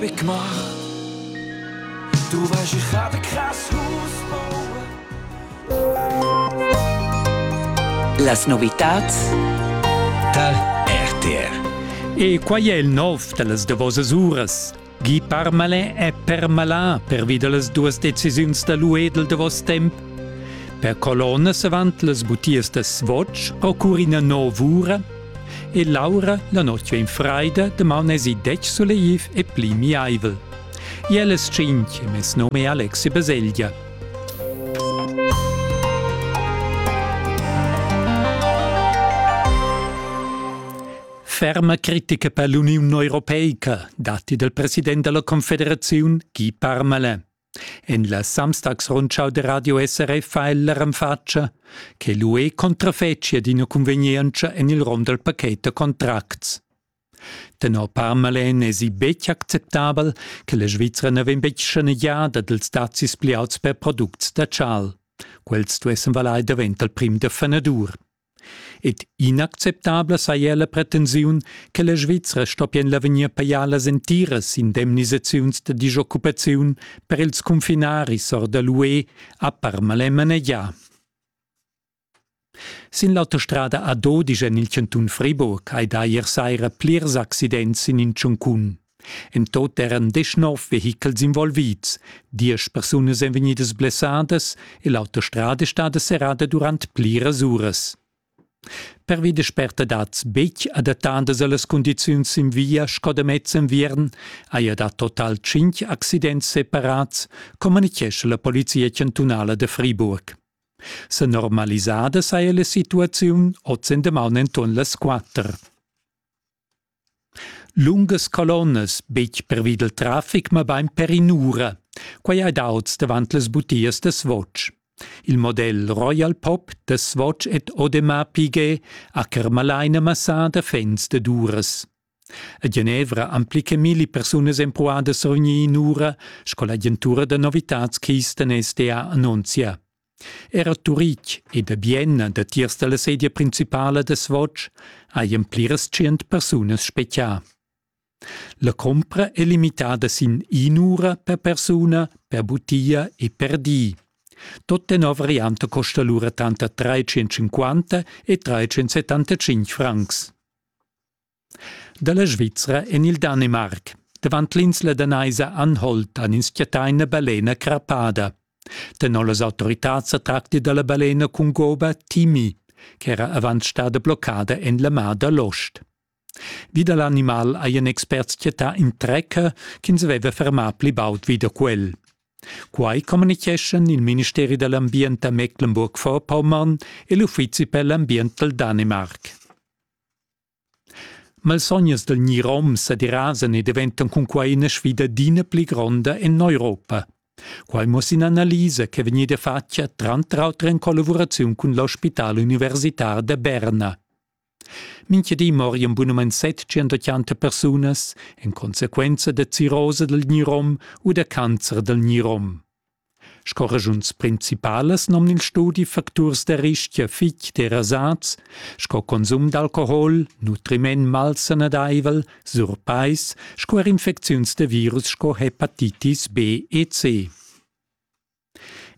Big Mach. Du weißt, ich habe krass Haus Las novitats tal RTR. E quai è il nov da las davosas uras. Guy Parmalin è permalà pervi da las duas decisiuns da l'UE del davos temp. Per colonnas avant las butias da Swatch occorre ina nova ura E Laura la notg vegn freida, damaun esi detg suleiv e pli miaivel. Iellas tschintg mes nome è Alexi Baselgia. Ferma critica per l'Uniun Europeica, dati del president della Confederazione Guy Parmelin. En la Samstagsrundschau da Radio SRF fa el la renfatscha che l'UE contrafetschia d'ina cunvegnientscha en il rom dal paket da contracts. Tenor Parmalen èsi betg acceptabel che la Svizra na vegn betg schanegiada dals dazis pli auts per products da chal. Quels stuessen valair davent dal prim da fenadur. Ed inacceptabla saja la pretensiun che la Svizra stoppien l'avegnir pajar las entiras indemnisaziuns da disoccupaziun per ils cunfinaris or da l'UE a Parma e manegià. Sin l'autostrada ad Odi en il chantun Friburg hai dà ier saira plirs accidents sin in tschuncun. En tot eran deschnov vehichels involvids, diesch persunas èn vegnidas blessadas e l'autostrada è stada serrada durant pliras uras. Pervi da spertadads betg adattadas a las cundiziuns sin via sco da mez enviern haja dà total tschintg accidents separads, communitgescha la polizia chantunala da Friburg. Sa normalisada saja la situaziun oz en damaun enturn las quatter. Lungas colonnas, betg pervi dal traffic, mabain per in'ura. Quai hai dà oz davant las butias da Swatch. Il model Royal Pop da Swatch ed Audemars Piguet ha carmalaina massà da fans dad uras. A Genevra han pli che milli persunas empruà da survegnir in'ura, sco l'agentura da novitads Keystone SDA annunzia. Era Turitg e da Bienna datiers dalla sedia principala da Svoc hajan pliras tschient persunas spechià. La compra è limitada sin in'ura per persuna, per butia e per di. Tot tenor variante costa allura tanter 350 e 375 francs. Dalla Svizra en il Danimarc. Davant l'insla danaisa Anholt han ins chattà ina balena crappada. Tenor las autoritads sa tracti dalla balena cun goba Timi, ch'era avant stada bloccada en la mar da l'ost. Vi da l'animal hajan experts chattà in trecker ch'ins aveva fermà pli baud vi da quel. Quai communitgeschan il ministeri da l'ambient a Mecklenburg-Vorpommern e l'uffizi per l'ambient dal Danimarc. Malsognas del gnirom sederasan e daventan cunquai ina sfida adina pli gronda en l'Europa. Quai muossa in'analisa che vegniva fatga tranter auter en collavuraziun cun l'ospital universitar da Berna. Mincha di morian bunamain 780 persunas, in conseguenza da cirrosa dal gnirom u da cancer dal gnirom. Sco raschuns principalas nomn'ins studi facturs da rischia fitg derasads sco consum d'alcohol, nutriment malsanadaivel, surpais sco er infecziuns da virus sco hepatitis B e C.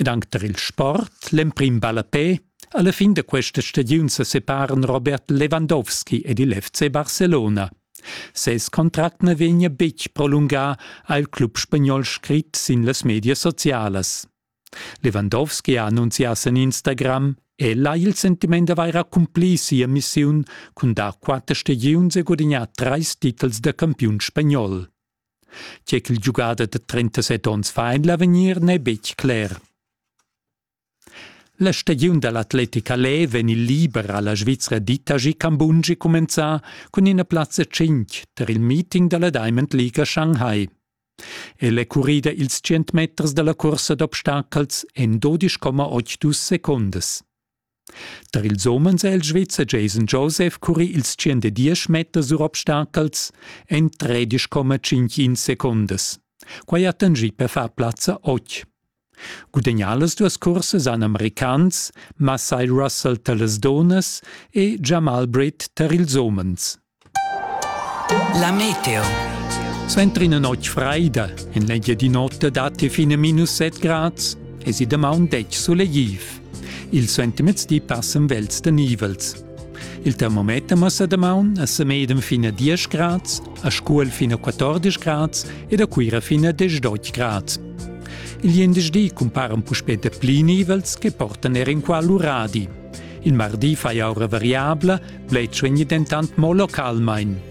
Ed anc tar il sport, l'emprim ballapè, alla fin da questa stagiun sa separan Robert Lewandowski ed il FC Barcelona. Ses contract na vegnia betg prolungà, ha il club spagnol scrit sin las medias socialas. Lewandowski ha annunzià sin Instagram, el ha il sentiment d'avair accumplì sia missiun cun dar quatter stagiuns e gudignar trais titels da campiun spagnol. Tge ch'il giugader da 37 onns fa en l'avegnir n'è betg cler. La stagiun da l'Atletic Alais vegn il liber ha la Svizra Ditaji Cambungi cumenzà cun ina plazza 5 tar il meeting da la Diamond League a Shanghai. El è currida ils 100 meters da la cursa d'obstacels en 12,8 secondas. Tar ils umens è il Svizzer Jason Joseph curri ils 110 meters sur obstacels en 13,51 secondas. Quai ha tangì per far plazza 8. Gudagnà las duas cursas han americans Masai Russell tar las dunnas e Jamal Britt tar ils umens. La meteo. Suenter ina notg fraida, en l'eglia di notte datti fine minus 7 grads, e si damaun detg sulegliv. Il suentermezdi passen vels da nivels. Il termometer massa damaun a Semedem fin a 10 grads, a Scuol fin a 14 grads ed a Cuira fin a 18 grads. Il jendeschdi cumparan puspè dapli nivels che portan er in qua l'uradi. Il mardi fai aura variabla, bled suegni dentant mo localmain.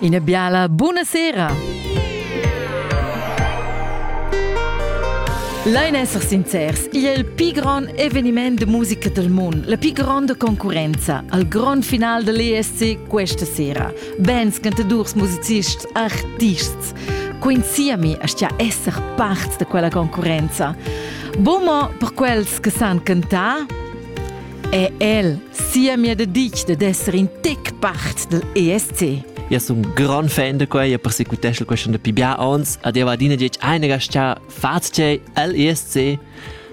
Ina biala buna sera! Lain esser sincers, igl è il pli grond eveniment de musica del mondo, la più grande concorrenza al grond final dell'ESC questa sera. Bands, cantadors, musicisti, artists. Coinciami a sta esser parte di quella concorrenza. Bomo per quels che san cantare? è el sia mia de dich de d'esser in tic part del ESC. Io sono un gran fan di questo, io persecutesco questo da pibià ons, ed io adina dice, einiger sta, fate l'ESC,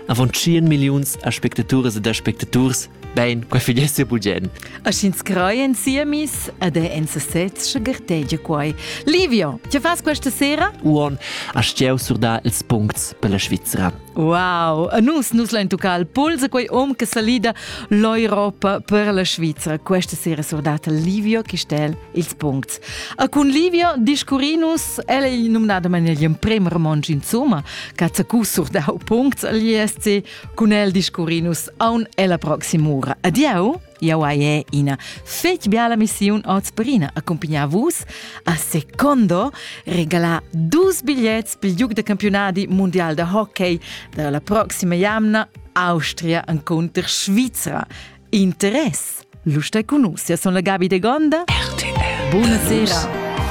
avon 100 milioni aspectaturas ed aspectaturs, ben, qua figlesse bulgen. A sch'ins creien siemis, ed è en sesez sche gertegia quai. Livio, ti fas questa sera? Uon, a stieu sur da ils puncts per la Svizzera. Wow, a nus nus lain tuccar al puls a quei um che salida l'Europa per la Svizra. Questa sera surdata Livio Chistel ils puncts. A cun Livio discurrinus, ella è nominada man agli emprem romansch insomma, Katsaku surdau puncts agli SC, cun el discurrinus aun ella proximura. Adieu! Jau hai ina fetg biala missiun oz Brina accumpagnar vus a Secondo regalar dus bigliets pel giug da campionadi mundial da hockey da la proxima jamna Austria encunter Svizra. Interess! L'usta con nus, sia son la Gabi de Gonda. RTL. Buonasera.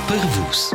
Per vus.